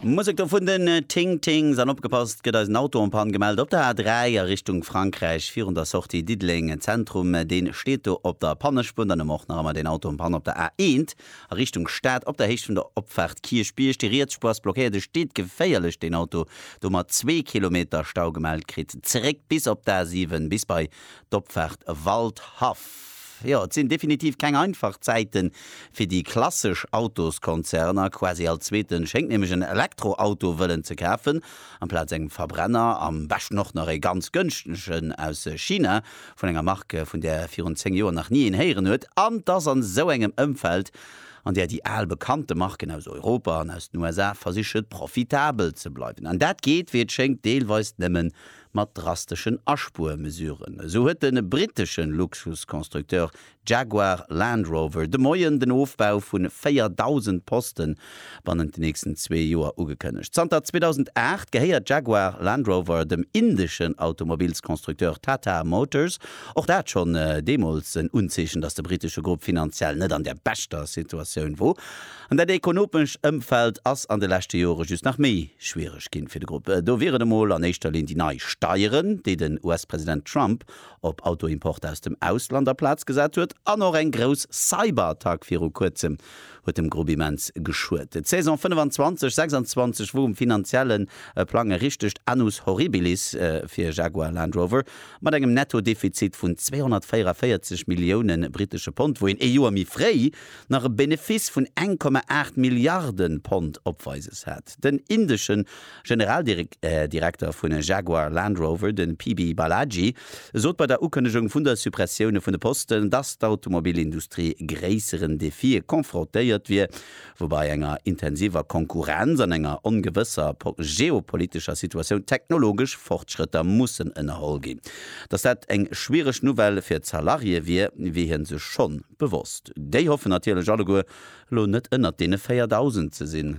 Musek do vun den Ting Tings an opgepasst, gëtt eis en Auto en Panne gemellt op der A3 a Richtung Frankräich virun der Sortie Diddeleng Zentrum. Deen steet do op der Pannespuer. Dann hu mer och nach ëmmer deen Auto en Panne op der A1 a Richtung Stad op der Héicht vun der Opfaart Kierchbierg. Déi riets Spuer ass blockéiert, e steet geféierlech deen Auto do mat zwee Kilometer Stau gemellt. Kritt zréck bis op d'A7 bis bei d'Opfaart Waldhaff. Jo, et sinn definitiv keng einfach Zäite fir déi klassesch Autoskonzerner. Quasi all Zweeten schéngt nämlech en Elektroauto wëllen ze kafen, amplaz engem Verbrenner, am beschten och nach e ganz gënschtegen aus China, vun enger Mark, vun där virun 10 Joer nach ni een héieren huet. An 't ass an esou engem Ëmfeld, an där déi al bekannte Marken aus Europa an aus den USA versiche profitabel ze bleiwen. An dat geet, wéi et schéngt, deelweis nëmmen mat drasteschen Aspuermesuren. Esou huet de brittesche Luxusconstructeur Jaguar Land Rover de Moien den Ofbau vu 4.000 Posten bannent den nächsten zwee Joer ugekënnegt. Zanter 2008 gehéiert Jaguar Land Rover dem indeschen Automobilsconstructeur Tata Motors. Och dat schonn deemools en Unzeechen, datt de brittesche Grupp finanziell net an der beschter Situatioun wor. An dat ekonomescht Ëmfeld ass an de leschte Jore just nach méi schwiereg ginn fir de Grupp. Do wier et emol an éischter Linn déi nei Steieren, déi den US-President Trump op Autoimporter aus dem Ausland a Plaz gesat huet. An och eng grouss Cyberattack viru Kuerzem huet dem Grupp immens geschuet. D'Saison 25, 26 wor um finanziellen Plang e richtegt Annus Horribilis fir Jaguar Land Rover, mat engem Netto-Defizit vun 244 Millioune britesche Pond, wou een ee Joer méi fréi, nach e Benefiss vun 1,8 Milliarden Pond opweises hat. Den indeschen Generaldirekter vun Jaguar Land Rover, den PB Balaji, sot bei der Ukënnegung vun der Suppressioune vun de Posten, dass d'Automobilindustrie gréisseren Defië confrontéiert wier, woubai enger intensiver Konkurrenz an enger ongewësser geopolitescher Situatioun technologesch Fortschrëtter mussen ënnerholl ginn. Dass dat eng schwiereg Nouvelle fir d'Salarié wier, wier hie sech schonn. Bewosst. Déi hoffen natierlech alleguer, elo net ënnert deene 4.000 ze sinn.